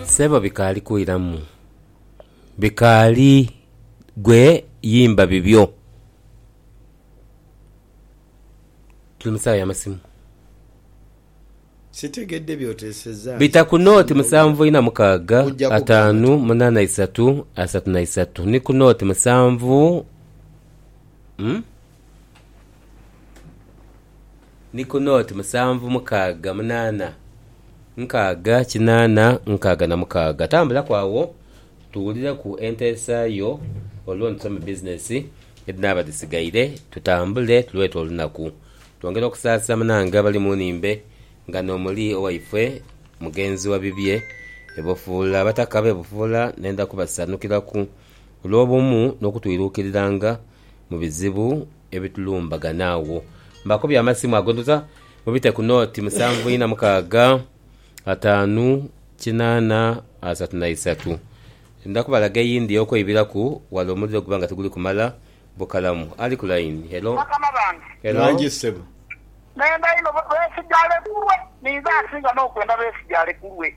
Sebo bikaali kwiramu bikaali gwe yimba bibyo tuli musawa yamasimu bita ku nooti musanvu ina mukaaga ataanu munaana isatu asatu na isatu ni ku nooti musanvu Ni ku nooti musanvu mukaaga munaana nkaaga kinaana nkaaga na mukaaga. Tambulaku agho tuwulireku enteesa yo olwo ntuse mu bizinesi edhinaaba dhisigaire tutambule tulwete olunaku twongere okusaasira munange abali mu nnhimbe nga n'omuli owaifwe mugenzi wa bibye e Bufuula. Abataka b'e Bufuula ndenda kubasanukiraku. olw'obumu n'okutwiruukiriranga mu bizibu ebitulumbagana. Agho mbakubye amasimu ago ndhuza mubite ku nooti musanvu ina mukaaga ataanu kinaana asatu na isatu. Ndha kubalaga eyindi ey'okweibiraku wala omuliro guba nga tiguli kumala bukalamu. Ali ku layini, helo? Bakama bange. Helo? Ghangi ssebo. Nenda inho beesigaale kulwe. Ninze asinga n'okwenda beesigaale kulwe.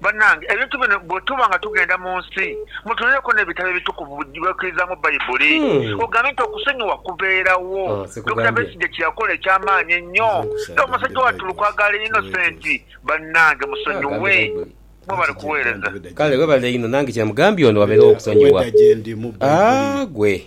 Banange ebintu bino bwetuba nga tugenda mu nsi mutulereku nebitabo ebitukuvu byebaikirizamu baibuli ogambye nti okusonyiwa kubeerawo. Dokita Besigye kyeyakola ekyamaanyi ennyo era omusajja wattu Lukwago ali innocent banange musonyiwe. Mwebale kuweereza. Kale webale inho nange kyemugambye ono waberewo okusonyiwa aah gwe.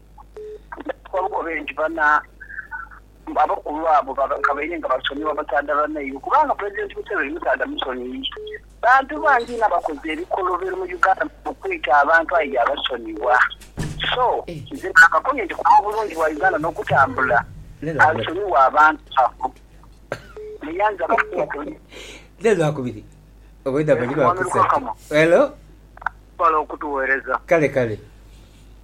Bakobe nti bana abakulu abo kabaire nga basonyiwa basaadha banaibwe kubanga Pulezidenti Museveni musaadha musonii. Bantu bangi inho abakoze ebikolobero mu Uganda okwita abantu aye yaabasonyiwa. So, nze naakakomye nti kuba obulungi bwa Uganda n'okutambula, asonyiwe abantu abo. Muyanzi abasinga tebali. Mwami Lukakamo, webale okutuweereza.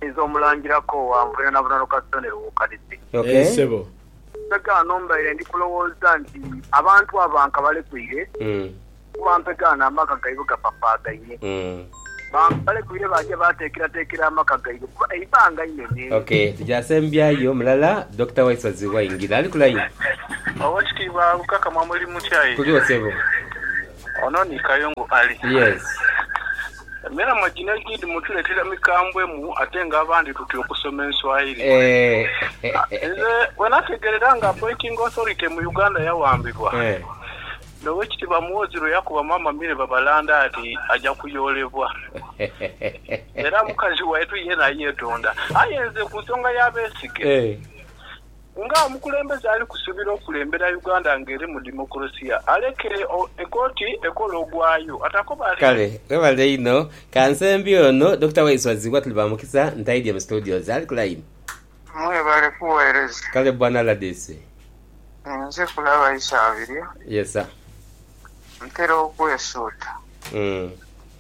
Nze omulangira ko wa nvunira na bunano kasita ne Lwokadide. Eeh sebo. Mpegaano mbaire ndi kulowooza nti abantu abo bankabalekweire kuba mpegaano amaka gaibwe gapapaagaine. Bankabalekweire baaja baateekerateekera amaka gaibwe kuba eibanga inene. Ok tugya asembyayo mulala Dokita Waisozi waingira. Ali ku line. Owekitiibwa Lukakamwa muli mutya aye. Tuligho sebo. Ono ni Kayungu Ali. Yes. Emilamo gino egindi mutuletera mikambwe mu ate nga abandi tutya okusoma enswahili. Eeh. Nze bwenategerera nga appointing authority mu Uganda yawambibwa ne Owekitiibwa Muhoozi lweyakuba Maama Milly Babalanda ati aja kuyoolebwa era mukazi waitu yena yetonda. Aye nze ku nsonga ya Besigye. Nga omukulembeze ali kusubira okulembera Uganda nga eri mu democracia, aleke ekooti ekole ogwayo. Kale webale inho kansembye ono Dokita Waiswa Zibwa tuli ba mukisa ntaidye mu studio ze ali ku line. Mwebale kuwereza. Kale bwana rdc. Nze kulaba Isabirye. Yes sir. Ntera okwesuuta.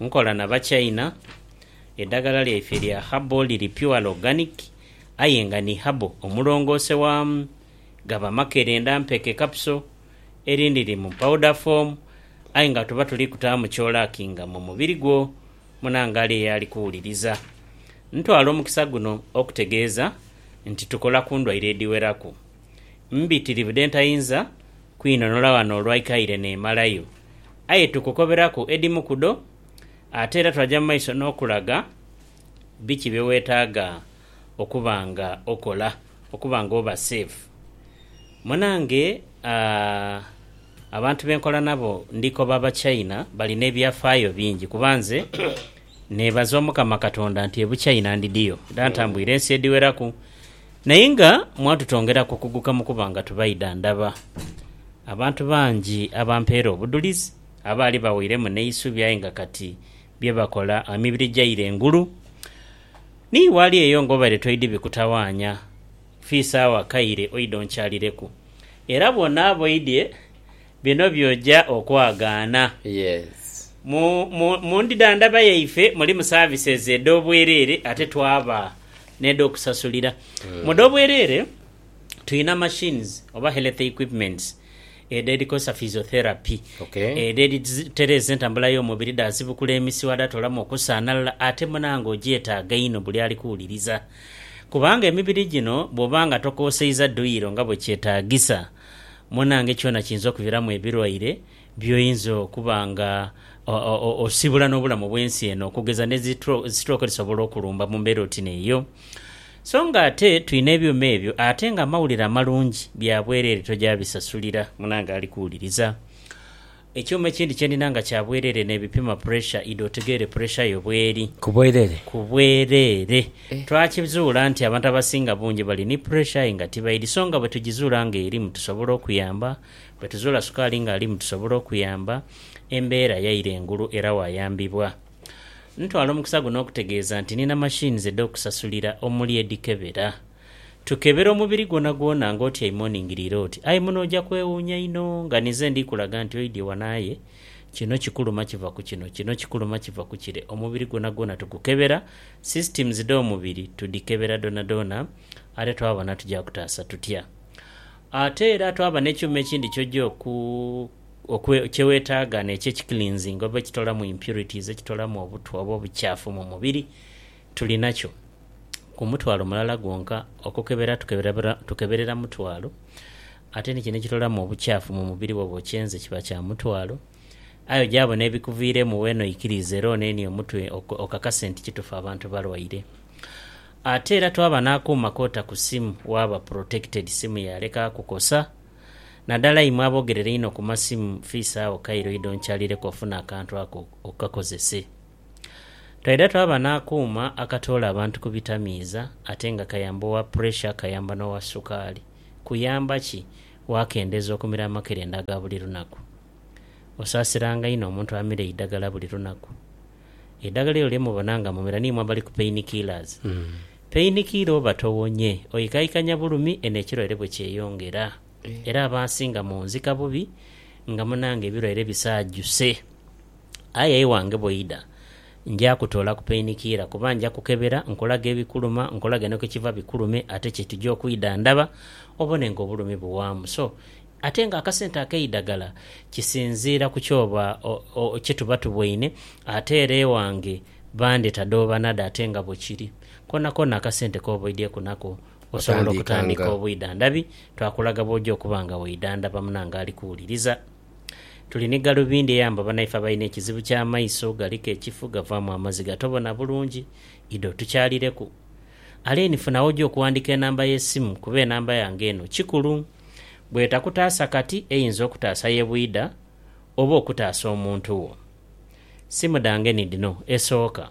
Nkola na Bachina, edhagala lyaife lya herbal liri purely organic aye nga ni herbal omulongoose waamu gaba makerenda mpeke capsule, erindhi liri mu powder form aye nga tuba tuli kutaamu kyolakinga mu mubiri gwo munangaale eyo ali kuwuliriza. Ntwala omukisa guno okutegeeza nti tukola ku ndwaire edhiweraku. Mbitiri budh'entayinza kwinhonhola ghano olwa ikaire n'emalayo, aye tukukoberaku edhimu ku dho, ate era twaja mu maiso n'okulaga biki bye weetaaga okuba nga okola okuba nga oba seefu. Munange abantu be nkola nabo ndi koba Abachina bali n'ebyafaayo bingi kuba nze neebaza Omukama Katonda nti e Buchina ndidhiyo era ntambwire ensi edhiweraku Naye nga mwatutongeraku okuguka mu kuba nga tubaidha ndaba abantu bangi abampeera obudhulizi, abaali baweiremu n'eisubi aye nga kati bye bakola emibiri gyaire engulu. Ni wali eyo ng'obaire toidhi bikutawaanya, fiisa agho akaire oidhe onkyalireku. Era bw'onaaba oidhie, Bino by'oja okwagaana. Yes. Mu, mu, mu ndidhandhaba yaife mulimu services edh'obwereere ate twaba n'edh'okusasulira. Mu dh'obwereere twina machines oba health equipments edho edhikosa physiotherapy, Okay. edho edhitereeza entambula y'omubiri dhaasibukula emisiwa dhaatoolamu okusaanalala ate munange ogyetaaga inho buli ali kuwuliriza kubanga emibiri gino bw'oba nga tokooseiza duyiro nga bwe kyetaagisa, munange kyona kiyinza okuviramu ebirwaire byoyinza okuba nga osibula nobulamu bwensi eno okugeza ne stroke edisobola okulumba mumbera oti neyo so nga ate tulina ebyuma ebyo ate nga amawulire amalungi byabwerere tojabisasulira munange ali kuwuliriza Ekyuma ekindi kye ndina nga kya bwereere n'ebipima puresha idho otegeere puresha yo bw'eri. Ku bwereere? Ku bwereere. Twakizuula nti abantu abasinga bungi bali ni puresha aye nga tibaidhi. So nga bwe tugizuula ng'erimu tusobola okuyamba. Bwe tuzuula sukaali ng'alimu tusobola okuyamba. Embeera yaire ngulu era waayambibwa. Ntwala omukisa guno okutegeeza nti nina machines edh'okusasulira omuli edhikebera. Tukebera omubiri gwonagwona nga otyaime oningiriire oti, aye muno oja kwewuunya inho nga ninze ndi kulaga nti oidhye wano aye kino kikuluma kiva ku kino, kino kikuluma kiva ku kire. Omubiri gwonagwona tugukebera, systems dh'omubiri tudhikebera dhoonadhoona ate twaba na tuja kutaasa tutya. Ate era twaba n'ekyuma ekindi ky'oja oku, oku, kye weetaaga n'ekyo ekicleansinga oba ekitolamu impurities, ekitolamu obutwa oba obucaafu mu mubiri Tuli nakyo ku mutwalo mulala gwonka okukebera tukeberera mutwalo ate ni kino ekitolamu obukyafu mu mubiri bwoba okyenze kiba kya mutwalo aye ogyabo n'ebikuviiremu weena oikiriize era onenie omutwe okakase nti kitufu abantu balwaire. Ate era twaba n'akuuma k'ota ku simu waaba protected simu yaaleka kukosa nadala imwe aboogerera einho ku masimu fiisa agho Cairo oidhe onkyalireku ofune akantu ako okakozese. Twaidha twaba n'akuuma akatoola abantu ku bitamiiza ate nga kayamba owa puresha, kayamba n'owa sukaali. Kuyamba ki? Waakendeza okumira amakerenda aga buli lunaku? Osaasiranga inho omuntu amira eidagala buli lunaku? Eidagala elyo lye mubona nga mumira ni imwe abali ku pain-killers. Pain-killer oba towonye, oikaikanya bulumi eno ekirwaire bwe kyeyongera. Era abansinga munzika bubi nga munange ebirwaire bisaajuse. Aye iwange bw'oidha, nja kutoolaku peinikiira, kuba nja kukebera nkulage ebikuluma, nkulage ni ku kiva bikulume ate kye tuja okwidha ndaba, obone ng'obulumi buwaamu. So, ate ng'akasente ak'eidagala kisinziira ku ky'oba kye tuba tuboine, ate era iwange bandheta dhobanadha ate nga bwe kiri. Koonakoona akasente k'oba oidhieku nako osobola okutandika obwidhandhabi, twakulaga bw'oja okuba nga weidhandhaba munange ali kuwuliriza. Tuli ni galubindi eyamba banaife abalina ekizibu ky'amaiso galiku ekifu gavaamu amaziga atobona bulungi. Idho otukyalireku. Alain funa w'oja okuwandiika enamba y'esimu kuba enamba yange eno kikulu. Bw'etakutaasa kati eyinza okutaasa ye bwidha oba okutaasa omuntu wo. Simu dhange ni dhino, esooka.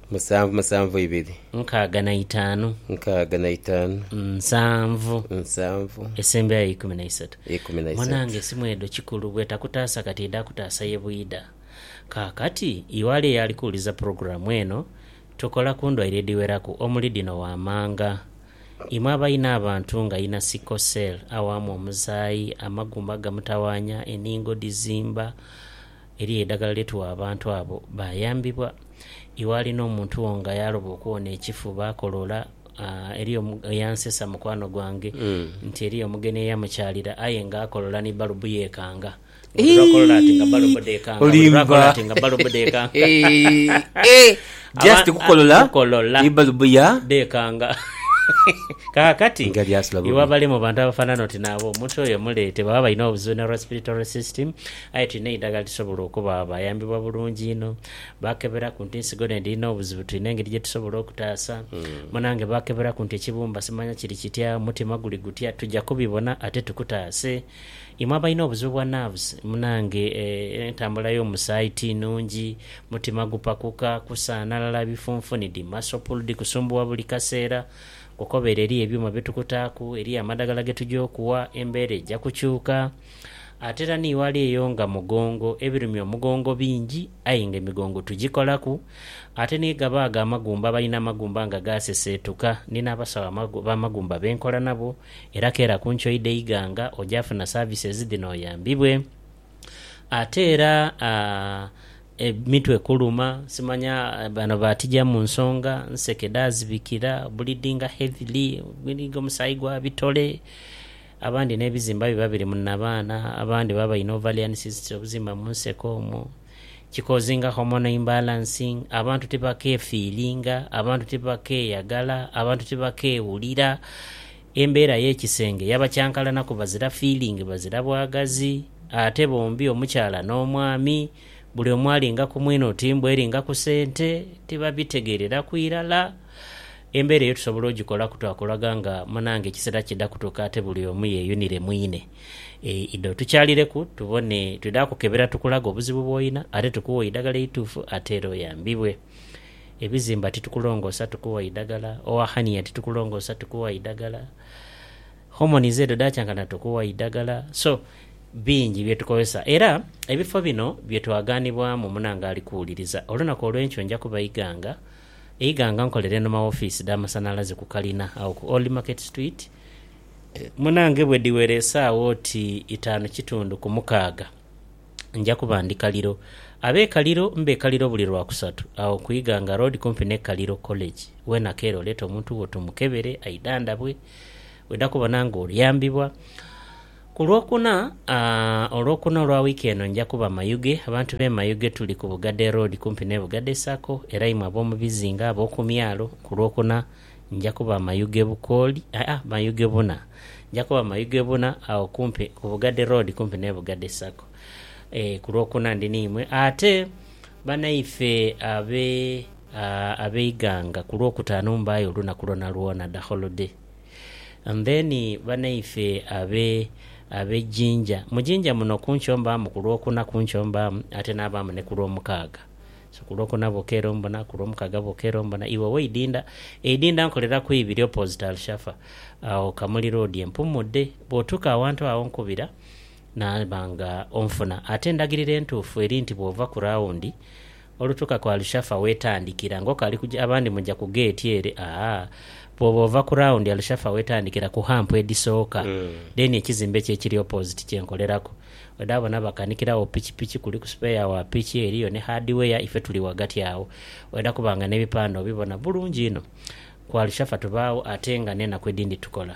Musanvu, musanvu ibiri. Nkaaga na itaanu. Nkaaga na itaanu. Nsanvu. Nsanvu. Esembera ya ikumi na isatu. Ikumi na isatu. Munange esimu edho kikulu bwetakutaasa kati edha kutaasa ye bwidha. Kaakati iwali eyali kuwuliza pulogulaamu eno, tukola ku ndwaire edhiweraku omuli dhino waamanga. Imwe abalina abantu nga alina sickle cell awaamu omusaayi, amagumba gamutawaanya, eningo dhizimba, Eriyo eidagala lye tugha abantu abo bayambibwa. Iwe ali n'omuntu wo nga yaaloba okuwona ekifu, baakoloola. Eriyo omugheni eyansesa mukwano gwange nti eriyo omugheni eyamukyalira aye nga akoloola ni balubu yeekanga. Buli lwa kolola ati nga balubu dheekanga, buli lwa kolola ati nga balubu dheekanga. Kukolola dheekanga. Kaakati, iwe abali mu bantu abafaanana oti nabo, omuntu oyo muleete. Baba balina obuzibu na respiratory system. Aye tulina eidagala lisobola okuba abayambibwa bulungi inho. Baakeberaku nti ensigo n'edhiri n'obuzibu tulina engeri gye tusobola okutaasa. Munange baakeberaku nti ekibumba simanya kiri kitya, omutima guli gutya, tuja kubibona ate tukutaase. Imwe abalina obuzibu bwa nerves, munange entambula y'omusaayi ti nnungi, mutima gupakuka, kusaanalala, bifunfunidi, muscle pull dhi kusumbuwa buli kaseera, kokobeere eriyo ebyuma bye tukutaaku, eriyo amadagala ge tuja okuwa, embeera eja kukyuka. Ate era ni ghale eyo nga mugongo, ebirumya omugongo bingi aye nga emigongo tugikolaku. Ate ni ghaba agho amagumba, abalina amagumba nga gaaseseetuka. Ndina abasawo b'amagumba be nkola nabo era keela ku nchoyi dh'eighanga oja funa services dhino oyambibwe. Ate era emitwe kuluma, simanya bano baatija mu nsonga, nseke dhaazibikira, bleedinga heavily, omusaayi gwa bitole. Abandi n'ebizimba biba biri mu nnabaana, abandi baba baine ovarian cysts, obuzimba mu nseke omwo, kikozinga hormonal imbalancing, abantu tibakeefiilinga, abantu tibakeeyagala, abantu tibakeewulira, embeera y'ekisenge yaba kyankalanaku bazira fiilingi bazira bwagazi ate bombi omukyala n'omwami buli omu alinga ku mwine oti mbu eringa ku sente tibabitegeereraku irala. Embeera eyo tusobola ogikolaku twakulaga nga munange ekisera kidha kutuuka ate buli omu yeeyunire mwine. Idho tukyalireku tubone, twidha kukebera tukulage obuzibu bw'olina ate tukuwe eidagala eituufu ate era oyambibwe. Ebizimba titukulongoosa tukuwa idagala, owa hania titukulongoosa tukuwa idagala, homonizi edho edhakyankana tukuwa idagala so bingi bye tukozesa. Era ebifo bino bye twaganibwamu munange ali kuwuliriza, olunaku olw'enkyo nja kubaiga nga Eighanga nkolera eno ma wofiisi dha masanhalaze ku kalina agho ku Old Market Street munange bwe dhiwera esaawa oti itaanu kitundu ku mukaaga nja kuba ndi Kaliro. Ab'e Kaliro mbe Kaliro buli Lwakusatu agho ku Ighanga Road kumpi n'e Kaliro College. Weena keeru oleete omuntu wo tumukebere aidhandhabwe. Bw'oidha kubona ng'oyambibwa. Ku Lwokuna, Olwokuna olwa wiiki eno nja kuba Mayuge. Abantu b'e Mayuge tuli ku Bugadee Road kumpi n'e Bugadee Sacco era imwe ab'omu bizinga, ab'oku myalo, ku Lwokuna nja kuba Mayuge Bukooli, aa Mayuge Buna. Nja kuba Mayuge Buna agho kumpi ku Bugadee Road kumpi n'e Bugadee Sacco. Ee, ku Lwokuna ndi n'imwe. Ate banaife abe, aa, ab'e Iganga, ku Lwokutaanu mbaayo olunaku lwonalwona, the whole day. And then banaife abe abe Jinja, mu Jinja muno kunkyo mbaamu ku lwokuna kunkyo mbaamu ate nabaamu ne ku lwomukaaga so ku lwokuna bwoka era ombona ku lwomukaaga bwoka era ombona iwe oweidinda eidinda nkoleraku ibiri opposite Alshafa agho Kamuli road empumudde bwotuuka awantu agho nkubira naba nga onfuna ate endagiriro entuufu eri nti bwova ku rawundi Olutuuka ku Al-Shafa w'etandikira, ng'okaali kuja abandi muja ku geeti ere, aa, bw'oba ova ku rawundi Al-Shafa w'etandikira ku hampu edhisooka, dheeni ekizimbe ki ekiri opoziti kye nkoleraku. Odaagho n'abakanikira agho pikipiki, kuliku sipeeya wa piki, eriyo ni hadiweya, ife tuli ghagati agho. Oidha kuba nga n'ebipande obibona bulungi inho. Ku Al-Shafa tubaagho ate nga n'enaku edhindi tukola.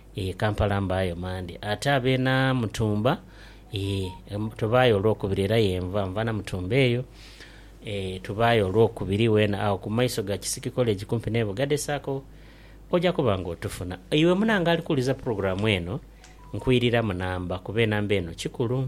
Eeh Kampala mbaayo Mande ate abe na mutumba eeh tubaayo olwokubiri era yenva nva na mutumba eyo eeh tubaayo olwokubiri wena agho ku maiso ga Kisiki College kumpi ne Bugade Sacco oja kuba nga otufuna. Iwe munange ali kuwuliza program eno nkwiriramu namba kuba enamba eno kikulu.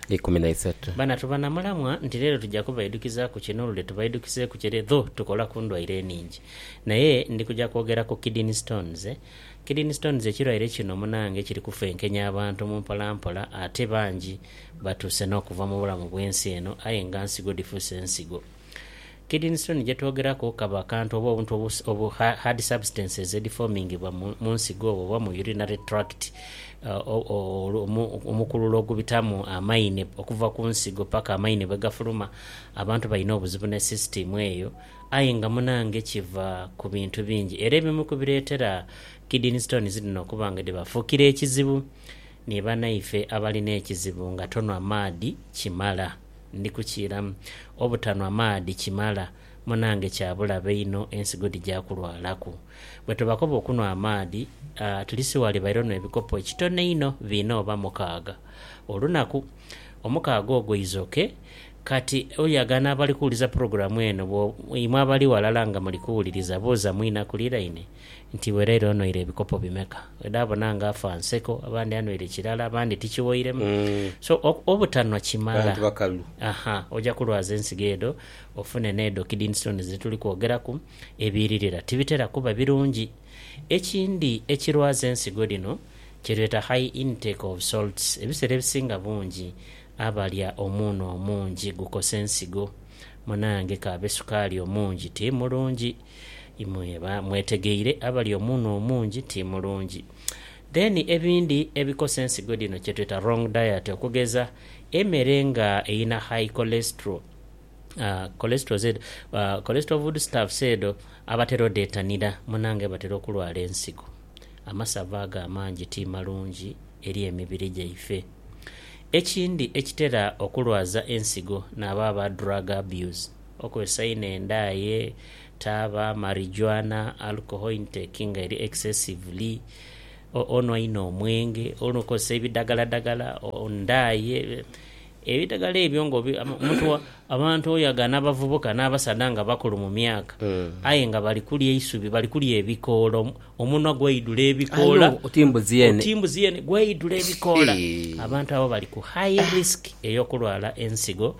ikumi na isatu. Bana tuba na mulamwa nti leero tuja kubaidukizaaku kino olude tubaidukizeeku kire dho tukola ku ndwaire eningi. Naye ndi kuja kwogera ku kidney stones. Kidney stones ekirwaire kino munange kiri kufenkenya abantu mu mpola mpola ate bangi batuuse n'okuva mu bulamu bw'ensi eno aye nga nsigo dhifuuse nsigo. Kidney stone gyetwogeraku kaba akantu oba obuntu obu, hard substances edhifominghibwa mu nsigo oba mu urinary tract, omukululo ogubitamu amaine okuva ku nsigo paka amaine bwegafuluma. Abantu balina obuzibu ne system eyo aye nga munange kiva ku bintu bingi era ebimu ku bireetera kidney stones dhino okuba nga dhibafuukira ekizibu ni banaife abalina ekizibu nga tonwa maadhi kimala. Ndi kukiiramu. Obutanhwa maadhi kimala, munange kya bulabe inho ensigo dhija kulwalaku. Bwe tubakoba okunhwa amaadhi, atilisi ghaliba ire onhwa ebikopo ekitono einho biina oba mukaaga olunaku. Omukaaga ogwo izoke. Kati oyagana abali kuwuliza pulogulamu eno, bwo, imwe abali ghalala nga muli kuwuliriza, buuza mwinakuliraine. nti bwe leero onhoire ebikopo bimeka. Wedhabona nga afa nseko, abandi anhoire kirala, abandi tikighoiremu. So obutanhwa kimala, aha, oja kulwaza ensigo edho ofune n'edho kidney stones dhe tuli kwogeraku. Ebiiririra tibitera kuba birungi. Ekindi ekirwaza ensigo dhino kye tweta high intake of salts. Ebiseera ebisinga bungi abalya omunhu omungi gukosa ensigo. Munange k'abe sukaali omungi ti mulungi. Imwe ba mwetegeire abali omunhu omungi ti mulungi. Then ebindi ebikosa ensigo dhino kyetweta wrong diet okugeza emere nga eyina high cholesterol, cholesterol zed, cholesterol food stuffs edho abatera odhetanira munange batera okulwala ensigo. Amasavu ago amangi ti malungi eri emibiri gyaife. Ekindi ekitera okulwaza ensigo nabo aba drug abuse. Okozesa inho endaaye, taaba, marijuana, alcohol intake nga eri excessively, onwa inho omwenge, okozesa ebidagaladagala, ndaaye, ebidagala ebyo nga obi, omuntu, abantu oyagha n'abavubuka n'abasaadha nga bakulu mu myaka aye nga bali kulya eisubi, bali kulya ebikoola, omunwa gwaidhula ebikoola, oti mbuzi yeene gwaidhula ebikoola. Abantu abo bali ku high risk ey'okulwala ensigo.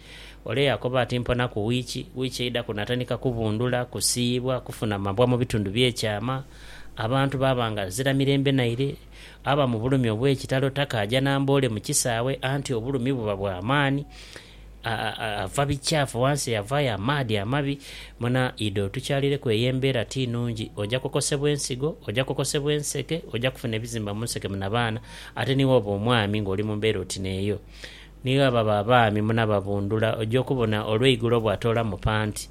Ole yaakoba ati, Mpona ku wiiki. Wiiki eidhaku natandika kubundhula, kusiiyibwa, kufuna mabwa mu bitundu by'ekyama. Abantu baaba nga azira mirembe naire. Aba mu bulumi obw'ekitalo, takaaja na mboole mu kisaawe, anti obulumi buba bwa maani. Ava bikyafu ghansi, yavaayo amaadhi amabi. Muna, idha otukyalireku eyo embeera ti nnungi. Oja kokosebwa ensigo, oja kokosebwa enseke, oja kufuna ebizimba mu nseke munabaana, ate ni wooba omwami ng'oli mu mbeera oti n'eyo. Ni gha baba abaami munababundhula, oja okubona olweigulo bwatoola mu panti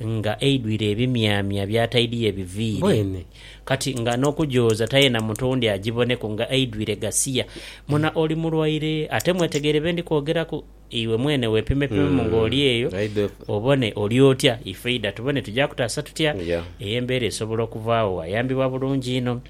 nga eidhwire ebimyamya byataidhiyo ebiviiri. Kati nga n'okugyoza tayena muntu owundi agiboneku nga eidhwire gasiya. Muna oli mulwaire, ate mwetegeere be ndi kwogeraku. Iwe mwene weepimepimemu ng'oli eyo, obone oli otya. Ifeidha tubone tugya kutaasa tutya. Eyo embeera esobola okuvaagho, wayambibwa bulungi inho.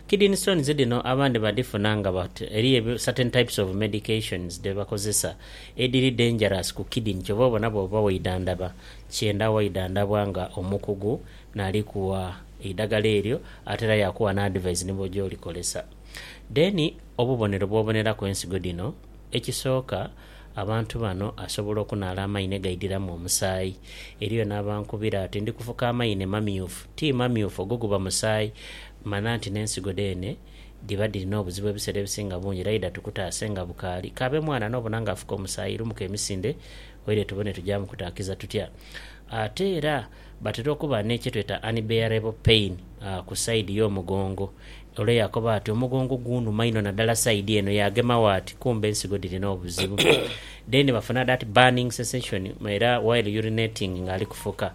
kidini stones dhino abandhi badhifuna nga but eriyo certain types of medications dhebakozesa edhiri dangerous ku kidini kyova obona bwoba waidhandhaba kyenda waidhandhabwa nga omukugu nali kuwa eidhagala eryo ate era yakuwa ni advise ni bwoja olikozesa. Then obubonero bwoboneraku ensigo dhino, ekisooka. Abantu bano asobola okunaala amaine gaidhiramu omusaayi. Eriyo n'abankubira ati, Ndi kufuka amaine mamyufu. Ti mamyufu, ogwo guba musaayi. Mana nti n'ensigo dheene dhiba dhiri n'obuzibu ebiseera ebisinga bungi. Era idha tukutaase nga bukaali. K'abe mwana n'obona ng'afuka omusaayi, lumuka emisinde oidhe tubone tugya mukutaakiza tutya. Ate era. Batera okuba ni kyetweta unbearable pain ku side yomugongo ole yakoba ati omugongo gunuma inho nadala side eno yagemagho ati kumbe ensigo dhirina obuzibu then bafuna that burning sensation era while urinating nga ali kufuka,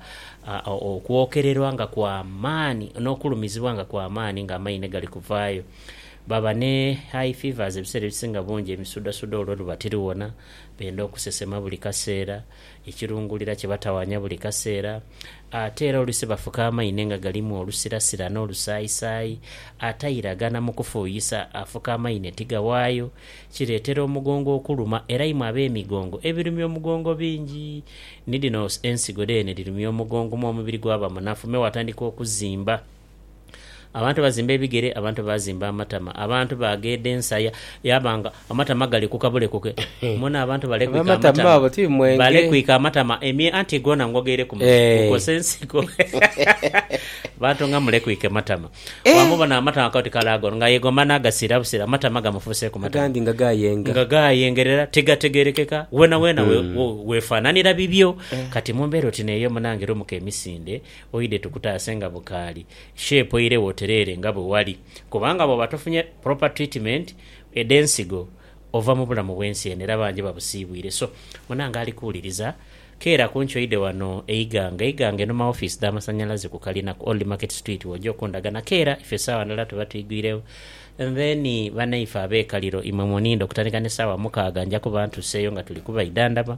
okwokererwa nga kwamaani nokulumizibwa nga kwamaani nga amaine gali kuvaayo. Baba ni high fevers ebiseera ebisinga bungi emisudhasudha olwo luba tiriwona, benda okusesema buli kaseera. ekirungulira kibatawanya buli kaseera, ate era olusi bafuka amaine nga galimu olusirasira n'olusaayisaayi, atairagana mu kufuuyisa, afuka amaine tigawaayo, kireetera omugongo okuluma, era imwe ab'emigongo ebirumya omugongo bingi, ni dhino ensigo dheene dhirumya omugongo, me omubiri gwaba munafu, me watandika okuzimba. Abantu baazimba ebigere, abantu baazimba amatama, abantu baagheeda ensaya yaaba nga amatama galekuka bulekuke. Muna abantu balekwika amatama, balekwika amatama emye anti goona ngo gaireku mu kukosa ensiko. Bantu nga mulekwike matama. Bwamubona amatama koti kale ago nga yegoma n'agasiira busiira, amatama gamufuuseeku matama. Agandi nga gaayenga. Nga gaayengerera tigategerekeka, weenaweena weefananira bibyo. Kati mu mbeera oti n'eyo munange lumuka emisinde Oidhe tukutaase nga bukaali, shape eire wotereere nga bwe wali kubanga bwooba tofunye proper treatment edhensigo ova mu bulamu bwensi eno era bangi babusiibwire so munange ali kuwuliriza keera kunki oidhe wano e Iganga, Iganga eno ma office dha masanyalaze ku kalina ku Old Market Street woja okundaga na keera ife esaawa ndala tuba twigwiregho and then banaife abekaliro imwe muniinde okutandika ne saawa mukaaga nja kuba ntuseeyo nga tuli kubaidhandhaba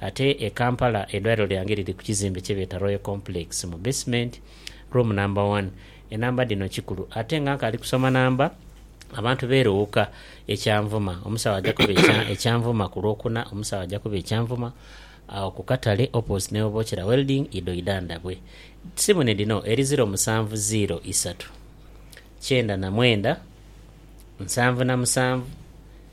Ate e Kampala eidwaliro lyange liri ku kizimbe kye beeta Royal Complex mu basement, room number one. Enamba dhino kikulu. Ate nga nkaali kusoma namba, abantu beeruwuka e Kyanvuma. Omusawo aja kuba e Kyanvuma ku Lwokuna. Omusawo aja kuba e Kyanvuma agho ku katale opposite ni Obochera Welding, idho idanda bwe. Simu ni dhino, eri ziro musanvu ziiro isatu kyenda na mwenda nsanvu na musanvu.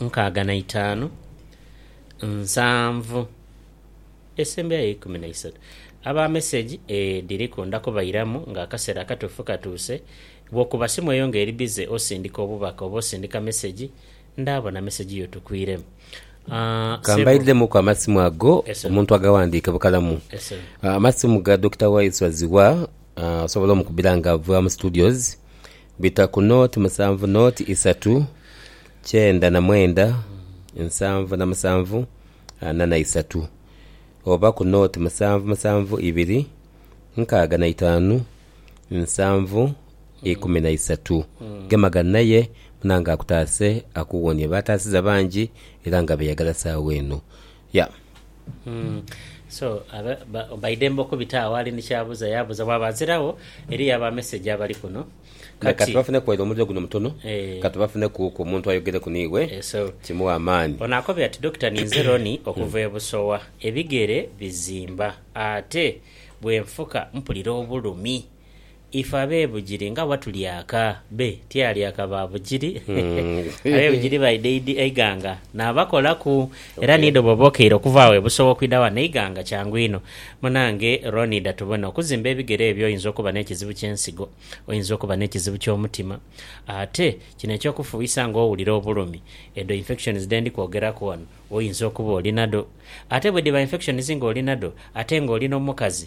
nkaaga na itaanu, nsanvu esembera yo ikumi na isatu. Aba mesegi edhiriku nda kubairamu nga akaseera akatuufu katuuse. Bw'okuba simu eyo nga eri bize osindika obubaka oba osindika mesegi, ndaabona mesegi yo tukwiremu. Ka mbaidhemuku amasimu ago omuntu agawandiike bukalamu. Amasimu ga Dokita Waiswa Zziwa osobola omukubira nga ova mu Studios Bita ku noti musanvu noti isatu kyenda na mwenda nsanvu na musanvu ana na isatu oba ku noti musanvu musanvu ibiri nkaaga na itaanu nsanvu ikumi na isatu. Gema ghano aye Munange akutaase akuwonie. Baataasiza bangi era nga beeyagala saagha eno. Yeah. So baidembe okubita agho ali ni kyabuza yabuza bwaba aziragho eriyo aba message abali kuno kati. Kati bafuneku waire omuliro guno mutono kati bafuneku ku omuntu ayogereku nighe kimughe amaani. Ono akobye ati Dokita ninze Ronnie okuva e Busowa ebigere bizimba ate bwenfuka mpulira obulumi. Ife abe Bugiri nga bwatulyaka be tyalyaka ba Bugiri abe Bugiri baidha idi e Iganga nabakolaku era ni idho bwoba okeire okuva agho e Busoga okwidha ghano e Iganga kyangu inho. Munange Ronnie dha tubone okuzimba ebigere ebyo oyinza okuba n'ekizibu ky'ensigo, oyinza okuba n'ekizibu ky'omutima ate kino eky'okufuuyisa nga owulira obulumi edho infections dhe ndi kwogeraku ghano oyinza okuba oli nadho. Ate bwedhiba infections nga oli nadho ate nga oli n'omukazi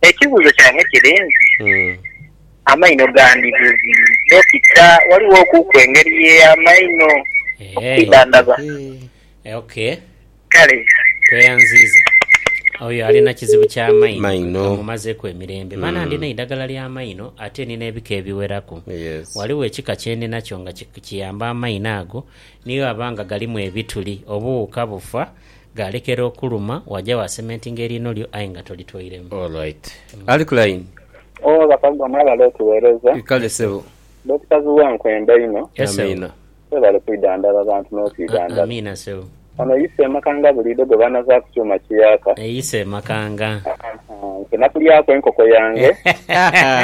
Ekibuuzo kyange kiri nti, amaino gandi bubi? Dokita, waliwo ku ku engeri ye amaino okwidhandhaba? Eeh, kale. Tweyanziiza. Oyo ali na kizibu kya maino kamumazeku emirembe. Baana ndina eidagala lya maino ate nina ebika ebiweraku. Waliwo ekika kye ndinakyo nga kiyamba amaino ago ni bwe aba nga galimu ebituli, obuwuka bufa Ghalekera okuluma, waja wa sementinga eriino lyo aye nga tolitwairemu. All right. Alick Line. Ooh Bakaluba mwebale otuwereza. Kale sebo. Dokita Zua nkwenda inho. Yes sebo. Amiina. Webale kwidhandhaba abantu notwidhandhaba. Amiina sebo. Ono yi semakanga buliido gwebanava ku kyuma kiyaaka. Eyi semakanga. Ahaa nze nakulyaku enkoko yange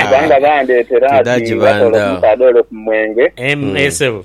kubanga bandetera ati nga toola ku musaadha ole ku mwenge. Emm eeh sebo.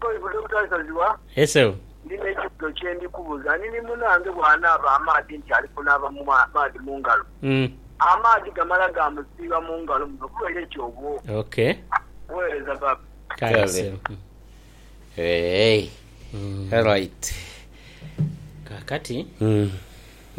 Baibuli Obutasaziwa, Eseu. Ndi n'ekibuzo kye ndi kubuza. Ani ni munaange bw'anaaba amaadhi nti ali kunaaba mu maadhi mu ngalo? Amaadhi gamala gaamusiiba mu ngalo muno bubaire ki obwo? Weereza Baba. Kale. Eehh. Alright. Kaakati.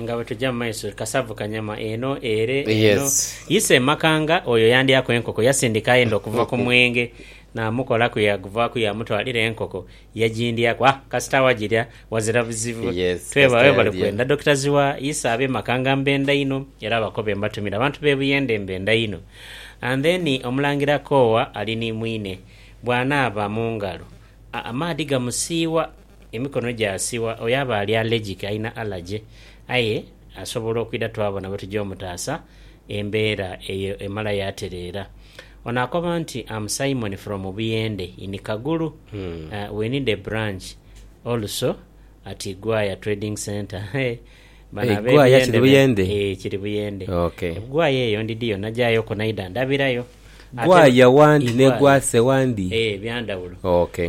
Nga bwe tuja mu maiso, kasavu kanyama eno ere eno. Ise Makanga oyo yandyaku enkoko yasindika aye nd'okuva ku mwenge naamukolaku yaaguvaaku yaamutwalira enkoko yagindyaku. Ha, kasita awagirya wazira bizibu. Twebale webale kwenda Dokita Zziwa. Ise ab'e Makanga mbenda inho era abakobe mbatumira. Abantu b'e Buyende mbenda inho. And then Omulangira Koowa ali ni mwine. Bw'anaaba mu ngalo, a, amaadhi gamusiiwa. Emikono gye asiwa oyo aba ali allergic, alina allergy, aye asobola okwidha twabona bwe tugya omutaasa embeera eyo emala yaatereera. Ono akoba nti, Am Simon from Buyende in Kagulu, we need a branch also at Igwaya Trading Centre. Bano ab'ebuyende be Ee, kiri buyende. Egwaya eyo ndidhiyo nagyayo ku naidha ndhabirayo. Gwaya wandi ne gwase wandi? Ee, bya ndhawulo.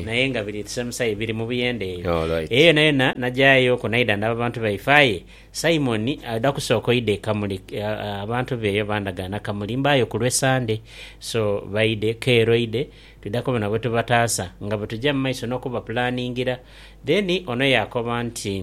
Naye nga biri kisemusayi biri mu buyende eyo. Eyo yonayona nagyayo ku naidha ndhaba bantu baife. Aye Simoni adha kusooka oidha e Kamuli. Abantu be eyo bandagaana Kamuli mbaayo ku lwe Sande. So baidhe, keeru oidhe twidha kubona bwe tubataasa nga bwe tuja mu maiso n'okubapulaaningira. Then ono yaakoba nti.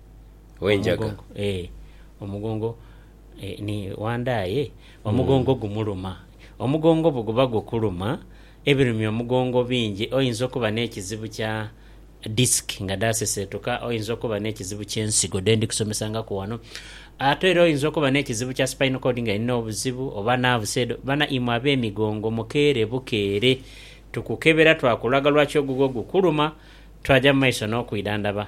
ow'enjaga. Omugongo, ee, omugongo, ee, ni wanda aye omugongo gumuluma. Omugongo bwe guba gukuluma, ebirumya omugongo bingi. Oyinza okuba n'ekizibu kya disiki nga dhaaseseetuka, oyinza okuba n'ekizibu ky'ensigo dhe ndi kusomesangaku ghano. Ate era oyinza okuba n'ekizibu kya spinal cord nga erina obuzibu, oba naavusi edho. Bana, imwe ab'emigongo mukeere bukeere tukukebera twakulaga lwaki ogugwo gukuluma, twaja mu maiso n'okwidhandhaba.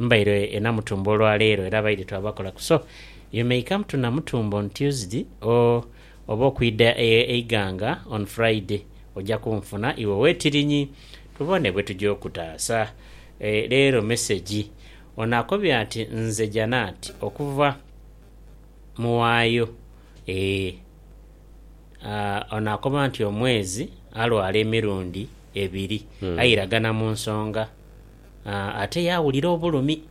Mbaire e Namutumba olwaleero era abaidhi twabakola ku so you may come to Namutumba on Tuesday or oba okwidha e Iganga on Friday oja kunfuna iwe wetirinyi tubone bwetuja okutaasa. E leero mesegi ono akobye ati Nze Janat okuva Muwaayo e a Ono akoba nti omwezi alwala emirundi ebiri aye iragana mu nsonga. ate yaawulira obulumi.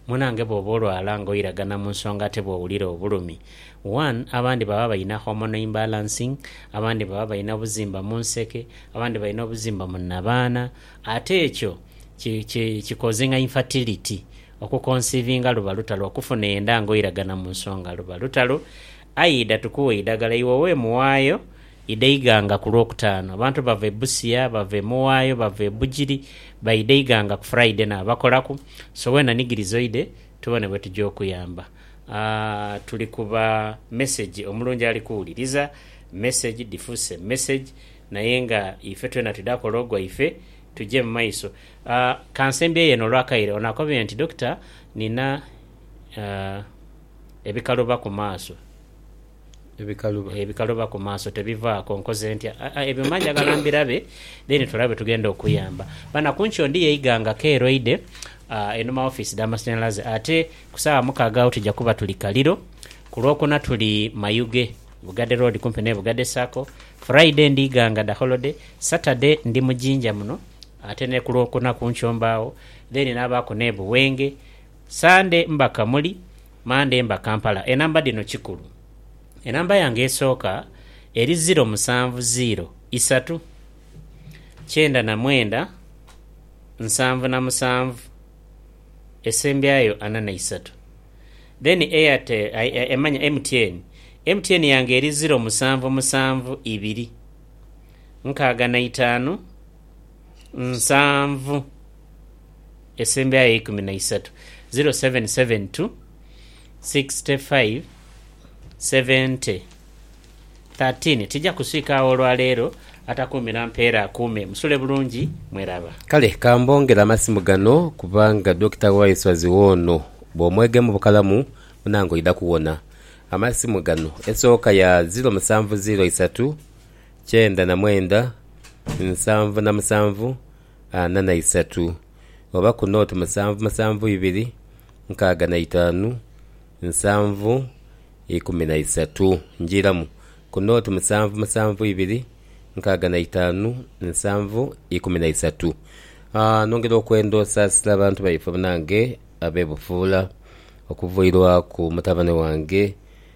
Munange bwooba olwala nga oiragana mu nsonga ate bwowulira obulumi, one abandi baba balina hormonal imbalancing, abandi baba balina obuzimba mu nseke, abandi balina obuzimba mu nnabaana ate ekyo kikozinga infertility, okukonsiivinga luba lutalo, okufuna enda nga oiragana mu nsonga luba lutalo. Aidha tukuwe eidagala iwe wemuwaayo Idha Iganga ku Lwokutaano. Abantu bava e Busia, bava e Mughayo, bava e Bugiri baidha Iganga ku Friday naabakolaku. So weena nigiriza oidhe tubone bwe tuja okuyamba. Aah tuli ku ba message omulungi ali kuwuliriza message dhifuuse message naye nga ife twena twidha kola ogwaife tuje mu maiso. Aah kansembyeyo eno olw'akaire. Ono akobye nti, Dokita nina aah ebikaluba ku maaso. Ebikaluba ebikaluba ku maaso tebivaako. Nkoze ntya? Aa ebyo mba njagala mbirabe then tulabe bwe tugenda okuyamba. Bana ku nkyo ndi yeiga nga keeroide aa einhuma w'ofiisi dha masanhalaze ate ku saawa mukaaga agho tuja kuba tuli Kaliro. Ku Lwokuna tuli Mayuge, Bugadhe Road kumpi n'e Bugadhe Sacco. Friday ndiiga nga dha holiday. Saturday ndi mu Jinja muno ate ni ku Lwokuna ku nkyo mbaagho then naabaaku n'e Buwenge Sande mba Kamuli, Mande mba Kampala. Enamba dhino kikulu. Enamba yange esooka eri ziro musanvu ziiro isatu kyenda na mwenda nsanvu na musanvu esembyayo ana na isatu then Airtel, MTN, MTN yange eri ziro musanvu musanvu ibiri nkaaga na itaanu nsanvu esemberayo eikumi na isatu 0772 65 70 13 tija kuswika agho olwa leero atakuumira mpeera akuume. Musule bulungi mweraba. Kale ka mbongere amasimu gano kubanga Dokita Waiswazi woono bw'omwegamu bukalamu munange oidha kuwona. Amasimu gano esooka ya ziro musanvu ziro isatu kyenda na mwenda, nsanvu na musanvu, ana na isatu, oba ku nooti musanvu musanvu ibiri, nkaaga na itaanu, nsanvu, ikumi na isatu. Njiiramu, ku nooti musanvu musanvu ibiri, nkaaga na itaanu, nsanvu, ikumi na isatu. Aah, nongera okwenda osaasira abantu baife banange ab'e Bufuula, okuvairwaku mutabane wange.